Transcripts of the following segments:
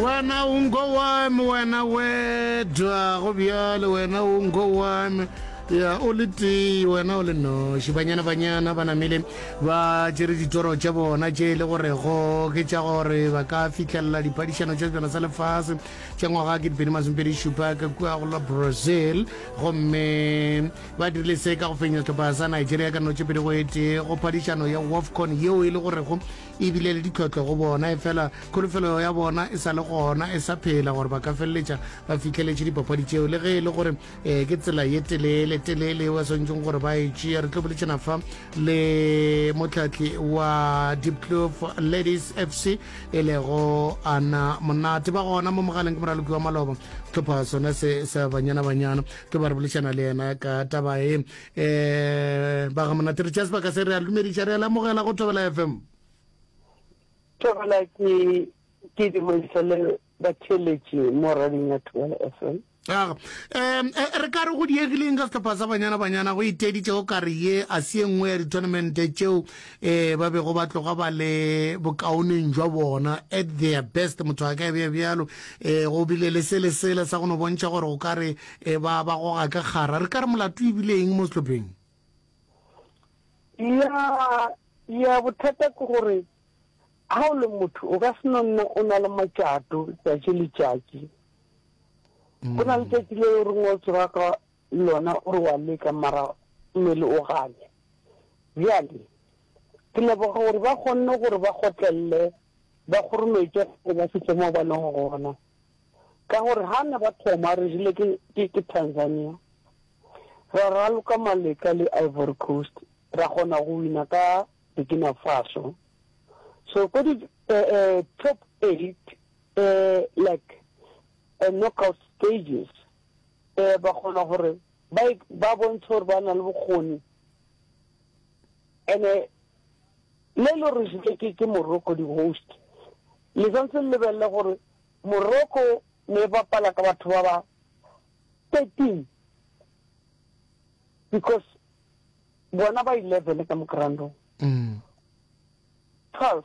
Wena o nko wa me, wena we dwago bjale, wena o nko wa me. Ya, o le tee, wena o le noši. Banyana, banyana ba namile ba tšere ditoro tša bona tše e le gorego ke tša gore ba ka fihlelela diphadišano tša sejana sa lefase tša ngwaga ke dipedi masomepedi šupa ka kua go la Brazil. Gomme ba dirile se ka go fenya sehlopha sa Nigeria ka notšepedi go etee go phadišano ya WAFCON yeo e le gorego e bile le ditlhohlo go bona efela kholofelo ya bona e sa le gona e sa phela gore ba ka feleletša ba fitlheletše dipapadi tšeo le ge e le gore um ke tsela ye telele telele eo ba swanetseng gore ba e tšea re tlo boletšana fa le motlhatli wa dipclof ladies f c e lego ana monate ba gona mo mogaleng ke moraloki wa maloba tlhopha sona se sa banyana banyana tlo ba re bolešana le yena ka taba e um ba ga monate re tšea sebaka se re a lumediša re a lamogela go thobela fm thobela ke ke dimodiša le batheletše mo rading ya thobela fm aga um e, re ka re go diegileng ka setlhopha sa banyana banyana go iteditše o kare ye a se ye nngwe ya di-tournamente tšeo um ba bego ba tloga ba le bokaoneng jwa bona at their best motho a ka e bea bjalo um go bile le se le sele sa go no bontšha gore o kare E ba ba goga ka kgara. Re ka re molato e bile eng mo sehlopheng? Ya, ya, bothata ke gore ha o le motho o ka se no nna o na le matšato tšatši le tšatši. Go na le tšatši le o reng o tsoga ka lona o re wa leka mara mmele o gane. Bjale ke leboga gore ba kgonne gore ba kgotlelele ba kgorometše gore ba fihle mo ba leng gona. Ka gore ha ne ba thoma re rile ke ke ke Tanzania. Ra raloka maleka le Ivory Coast ra kgona go wina ka Burkina Faso. So ko di eh eh top eight eh like eh knockout stages eh ba kgona gore ba ba bontshe gore ba na le bokgoni. Ene le lo re jwile ke ke Morocco di host le santse le lebelele gore Morocco ne e bapala ka batho ba ba 13 because bona ba 11 ka mo groundong mm. 12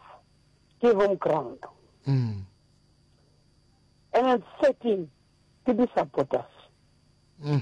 ke home ground mm. and then 13 ke di supporters mm.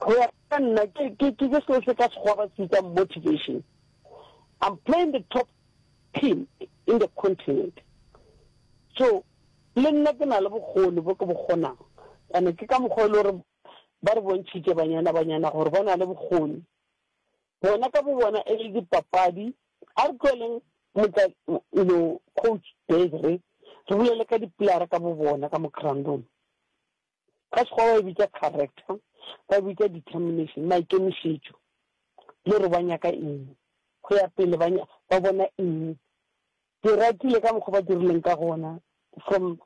Go ya ka nna ke ke ke ke seo se ka sekgowa ba se bitsang motivation. I'm playing the top team in the continent. So le nna ke na le bokgoni bo ke bo kgonang. Ane ke ka mokgwa e le gore ba re bontšhitše banyana banyana gore ba na le bokgoni. Bona ka bo bona e le dipapadi a re tlweleng motla you know coach Desiree re bolele ka dipolare ka bo bona ka mo groundong. Ka Sekgowa ba e bitša character, ba e bitša determination, maikemišetšo le gore ba nyaka eng, go ya pele ba ba bona eng. Ke ratile ka mokgwa ba dirileng ka gona from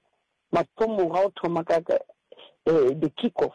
mathomong ga o thoma ka um the kick off.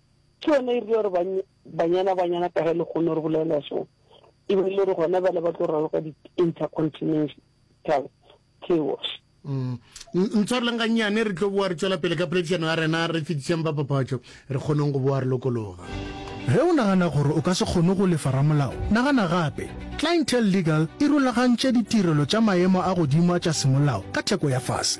Ke yona e rile gore banyana banyana ka ge le kgone gore bolela so e be le gore gona bale ba tlo raloka di-intercontinental chaos mm. ntshwareleng gannyane re tlo boa re tswela pele ka poledišano ya rena re fetišeng ba papatšo re kgoneng go boa re lokologa Ge o nagana gore o ka se kgone go lefa ramolao, nagana gape. Clientele Legal e rulagantše ditirelo tša maemo a godimo a tša semolao ka theko ya fase.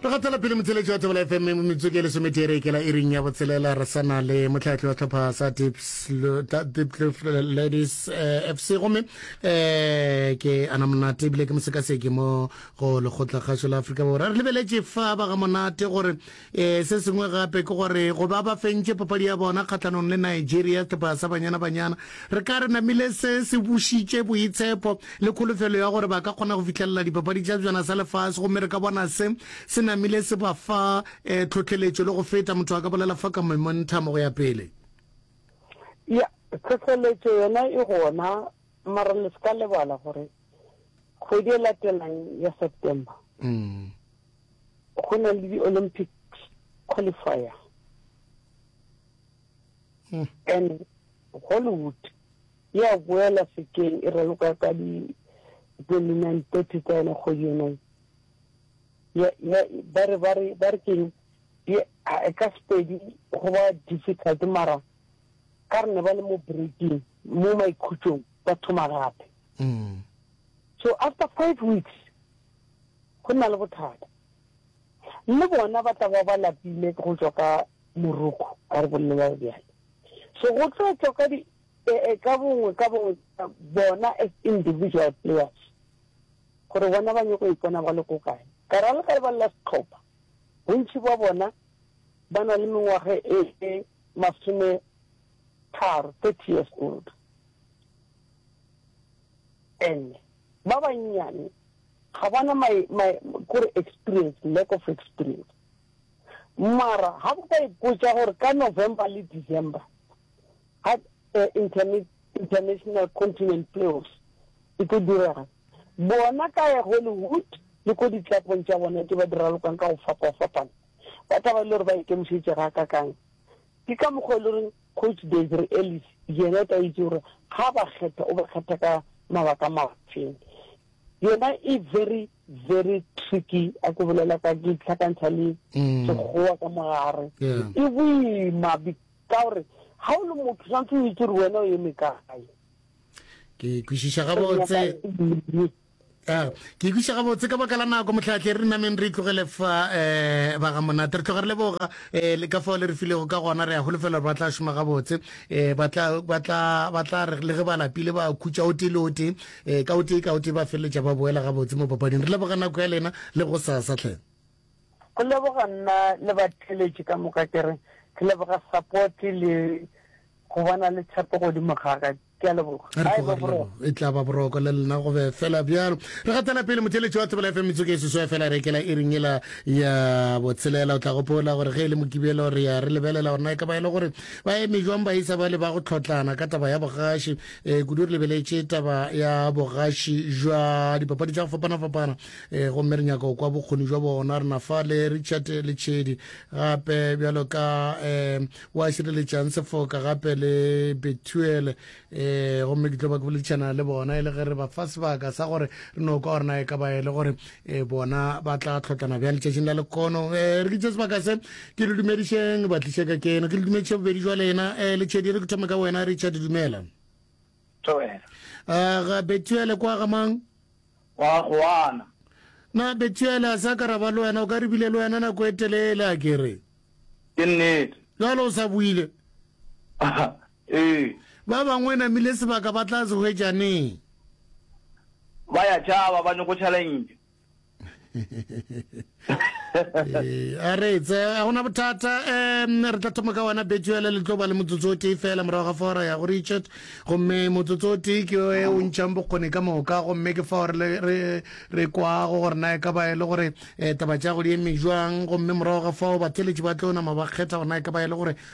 Re gatela pele motheletši wa Thobela FM metsotso ke lesometee re ikela iring ya botshelela re sa na le motlhatlhi wa tlhopha sa Diepkloof Ladies eh, FC gomme eh, ke ana monate ebile ke mosekaseki mo go lekgotla kgašo la Afrika Borwa re lebeletše fa ba ga monate gore eh, se sengwe gape ke gore go ba ba fentše papadi ya bona kgatlhanong le Nigeria tlhopha sa banyana banyana Re ka re namile se se bušitše boitshepo le kholofelo ya gore ba ka kgona go fihlelela Dipapadi tša Sejana sa Lefase gomme re ka bona se se namile se ba fa um tlhohleletšo le go feta, motho a ka bolela fa ka Momentum go ya pele. Ya, tlhohleletšo yona e gona, mara le se ka lebala gore kgwedi e latelang ya September go na le di-Olympics qualifier. and Hollywood e a boela sekeng e raloka ka di 29 30 tsa yona kgwedi yona ba re ba re ba re keng e ka sepedi go ba difficult mara ka re ne ba le mo breaking mo maikhutsong ba thoma gape mm. so after five weeks go na le bothata le bona ba tla ba ba lapile go tswa ka Moroko, a re bolela bjalo. So go tlo tšwa ka di, eh, ka bongwe ka bongwe bona as individual players, gore bona ba nyoko ipona ba le ko kae. Ka ra le ka lebala la setlhopha, bontši bwa bona ba na le mengwaga e e masome tharo, thirty years old. And ba bannyane ga ba na my, my, kore experience, lack of experience. Mara ha bo ka ipotša gore ka November le December ha eh, internet International Continent Playoffs e tlo direga bona ka ya Hollywood le ko ditlapong tša bona ke ba di ralokang ka go fapa-fapana ba taba e le gore ba ikemišetše ga ka kang ke ka mokgwa e le goreng coach desre ellis yena o tla itse gore ga ba kgetha o ba kgetha ka mabaka mafeng yona e very very tricky a ko bolela ka ke tlhakantšha le mm. sekgowa ka mogare e boima ka gore ga o le motho tshwanetse o itse gore wena o eme kae ke kwešiša gabotse ah, ke ikwiša gabotse ka baka la nako motlhatlhe re nameng re itlogele fa um baga monate re tloga re leboga um eh, le ka fao le re filego ka gona re ya golofela gore ba tla šoma gabotse um ba tla re le ge ba lapile ba khutša o tee le o tee e ka o tee ka o tee ba feleletša ba boela gabotse mo papading re leboga nako ya lena le go sasa tlhe go leboga nna le batheletše ka moka ke re ke leboga support le go bona le tshepo godimo gaga ke a leboga e tla ba boroko le lena go be fela bjalo re gatela pele motheletše wa tsebela fm metsoko e seso ya fela rekela e reng ela ya botshelela o tla gopola gore ge e le mokibelo re ya re lebelela gore na e ka ba e le gore ba eme jwang ba isa ba le ba go tlhotlana ka taba ya bogaši e kudu re lebeletše taba ya bogaši jwa dipapadi tša go fapana-fapana e gomme re nyaka kwa bokgoni jwa bona re nafa le richard le tšhedi gape bjalo ka um wa šireletšang sefoka gape le betuele um gomme ke tlo ba ke boledišana le bona e le ge re ba fa sebaka sa gore re no kwa gore na e ka ba e le gore e bona ba tla tlhotlana bjang letšatšing la lekono um re ke tse sebaka se ke le dumedišeng ba tliše ka ke eno ke le dumediše bobedi jwa lena um eh, letšhedi re ke thome ka wena richard dumela um ga betuele kwa gamang wa goana na betuele a sa ka ra ba le wena o ka re bile le wena nako e telele a kere ke nnete jalo o sa buile Ee. Ba bangwe namile sebaka ba tla se hwetša neng? Ba ya tšhaba, ba nyoko challenge. Ee, a re etse, a gona bothata. Um, re tla thoma ka wena Betuele, le tlo ba le motsotso o tee fela morago ga fora ya go Richard. Gomme motsotso o tee ke e o ntšhang bokgoni ka moka, gomme ke fao re, re, re kwago gore na e ka ba e le gore eh, taba tša go di eme jwang. Gomme morago ga fao batheletši ba tlo nama ba kgetha gore na e ka ba e le gore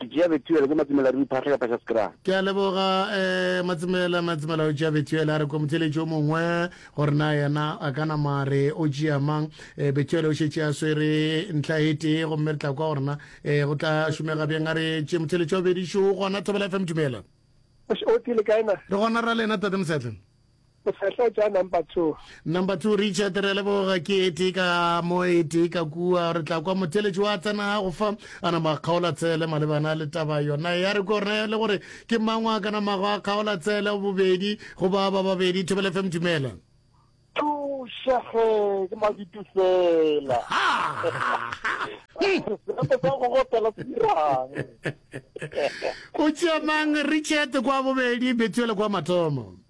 Ke tšea Bethuele, ke Matsumela re iphahle ka Pasha Skra. Ke a leboga eh, Matsumela, Matsumela o tšea Bethuele a re ko motheletši o mongwe gore na yena a ka nama re o tšea mang. Eh, Bethuele o šetše a swere ntlha e tee gomme re tla kwa gore na eh, go tla šomega bjang a re tše motheletši wa bobedi šo gona Thobela FM dumela. Osh, o tile kae na? Re gona ra lena Tate Mosetle. O sa tla tša number two. Number two, Richard, re leboga ke e tee ka mo e tee ka kua. Re tla kwa motheletši wa tsena go fa a nama a kgaola tsele malebana le taba yona ya re kore le gore ke mang wa ka namago a kgaola tsele bobedi go ba ba babedi. Thobele FM, dumela. Thušege ke maditu fela. Ha! Re tla go gopela tsirang. o tšea mang richard kwa bobedi betuele kwa mathomo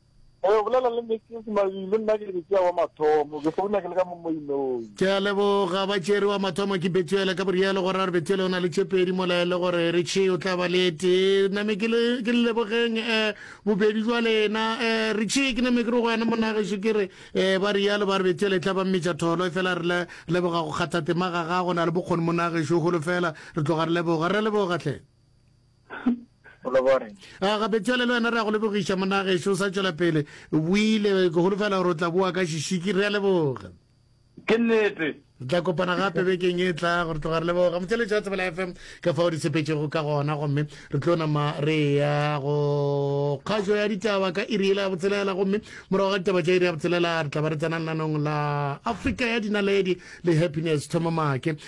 o bolela le mrs mabile nna ke ke wa mathomo ke founa ke le ka mo moinoi ke a leboga ba tšere wa mathomo ke betuele ka borielo gore a re betuele o na le tšepedi mola e le gore re tšhe o tla ba le tee name ke le lebogeng um bobedi jwa lena um re tšhe ke name ke re go wena monageso ke re um ba rialo ba re betuele e tla ba mmetša tholo e fela re leboga go kgathatema ga gago na le bokgoni monageso golo fela re tloga re leboga re leboga hle a ah, gape tšwele le wena re ya go lebogiša monageso o sa tšwela pele buile ke holofela gore o tla boa ka šishiki re a leboga ke nnete re tla kopana gape bekeng e tla gore tloga re leboga motšheletši wa tsebela fm ka fao di sepetšego ka gona gomme re tlo nama re ya go kgašo ya ditaba ka iri ele ya botshelela gomme morago ga ditaba tša iri ya botshelela re tla ba re tsenang lanong la afrika ya dinaledi le happiness thomamake